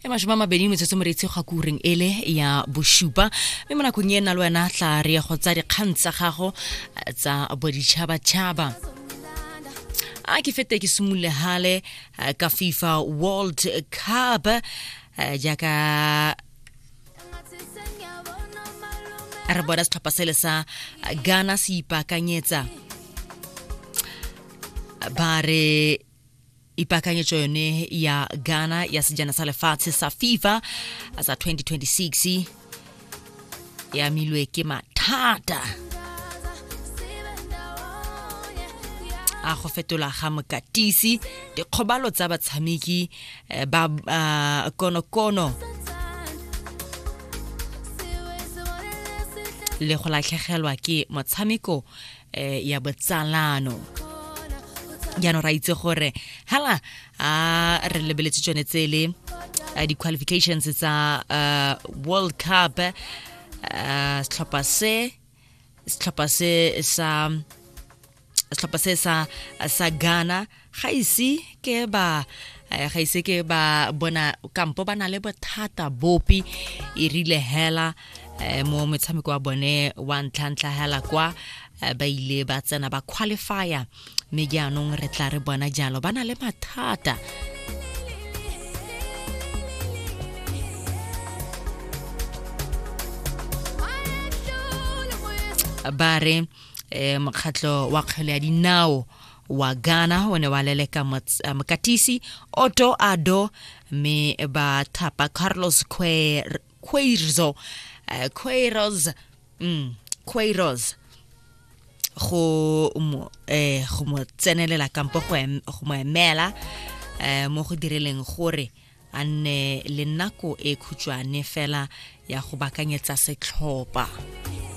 e masome a mabedi metsotso moretsi ga kureng ele ya bosupa mme mo nakong e na le wena tla re ya go tsa dikgang tsa gago eh, tsa boditšhabatšhaba a ke fete ke simolole hale eh, ka fifa world cup eh, jaaka re bona setlhopha sele sa ghana se ipaakanyetsa ba re ipakanyetso yone ya ghana ya sejana sa lefatshe sa fifa sa 2026 e amilwe ke mathata a go fetola ga mokatisi dikgobalo tsa batshameki eh, bab, uh, kono kono le go latlhegelwa ke motshameko eh, ya botsalano jaanong ra itse gore hala a re lebeletse tsone tsele eh, di-qualifications tsa uh, world cup uh, setlhopha se setlhopha se sa setlhopha se sa sa Ghana ga ise ke ba eh, ga ise ke ba bona kampo ba na le bothata bopi e rile hela eh, mo metshameko wa bone wa ntlha ntlha hela kwa eh, ba ile ba tsena ba qualifier mme jaanong re tla re bona jalo ba na le mathata ba re um eh, mokgatlho wa kgwele ya dinao wa ghana o ne wa leleka eh, mokatisi otto ado mme ba thapa carlos quairzo eh, quairos mm, quairos go mo eh go mo tsenelela kampo go em- go mo emela eh mo go direleng gore a nne le nako e khutshwane fela ya go bakanyetsa setlhopa